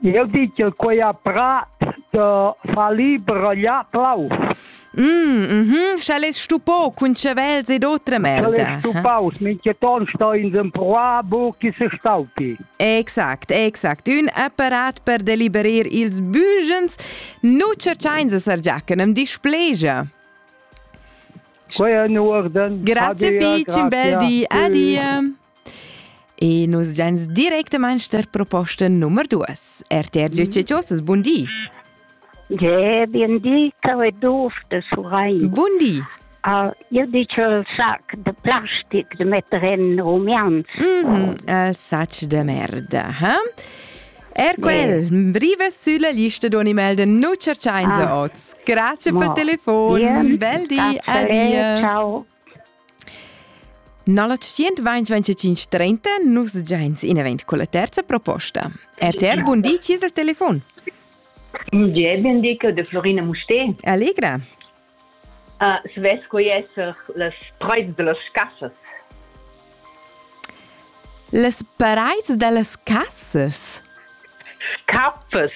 Jeu di ch'el quei ha prat da far liber a glià plaus. Mm, mhm, sch'el es stupò cun chavels ed otra merda. Quel è stupaus, mincheton sto ins empruar buc chi se staupi. Exact, exact. Ün apparat per deliberir ils bugens. Nu cerchains a Sar Giachen am displegia. Quei è in urden. Grazie fich, un bel di. Adia. E nus gens directamain der proposta nummer 2. RTR Giustiziosas, bun di! Ja, bun di, cau e duf de Surein. Bun di! Uh, io dice il sac de plastic de metter in rumians. Mm -hmm, il sac de merda, eh? Er quel, yeah. breve sulla lista di animal de nu cerciain ah. oz. Grazie per il telefon, bel di, adia. Ciao. Nalla 12530 nus giains inavent con la terza proposta. RTR Bundi, ci es il telefon? Gie, bendica de Florina Musté. Allegra. Uh, svess co esser las praids de las cassas. Las praids de las cassas? Caffes.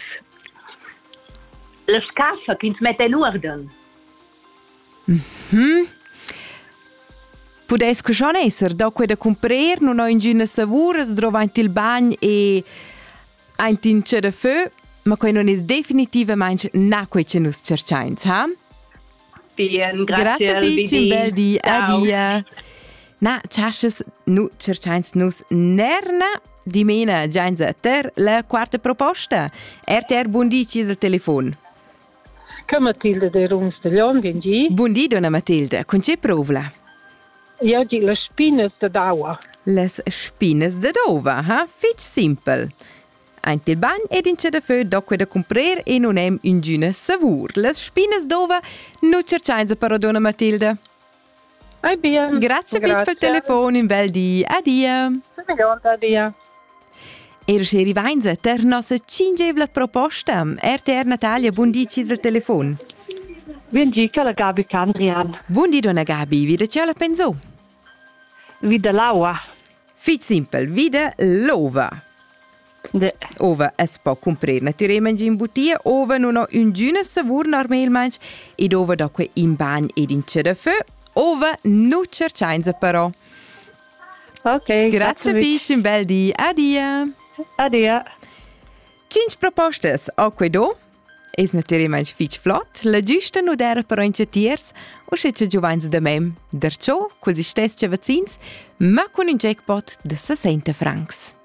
Las cassas che ins metta in uorden. Mhm. Pudess que schon esser da quella cumprer non ho ingüna savuras drovanti il bagn e aint in ce da fö, ma quei non es definitivamaing na quei che nus cerchains, ha? Bien, grazie, grazie Albibi. un bel di, Ciao. adia. Na, chasches nu cerchains nus nerna dimena giains a ter la quarta proposta. RTR Bundi ci es al telefon. Che Matilda de Runs de Leon vien gi? Bun di, donna Matilda. Cun tge provla? Io gi las spinas de daua. Les spinas de daua, ha? Fitch simpel. Aint il bagn ed in de feu docque da cumprer e non hem ingüna savur. Les spinas d'ova nu cerchainsa però, donna Matilda. Ei bien. Grazie grazie. per il telefono in bel di. Adia. Adia. Er sche rivainza ter nossa cingevla proposta. RTR Natalia, buon di ci il telefon. Buon di, che la Gabi Candrian. Buon di donna Gabi, vide ce la penso? Vide l'aua. Fit simple, vide l'ova. Ova es po cumprer natirer mangin butia, ova non ho üngüna savur normalmaing ed ova da que in bagn ed in ce da fö, ova nu cerchainsa però. Ok. Grazie fich, un bel di. Adia. Adia. 5 propostas ho que do. Es naturalmaing fich flot, la giusta nu dera però in tiers, usche cha giovans da mem, derciò culs istess vaccins, ma cun ün jackpot da 60 francs.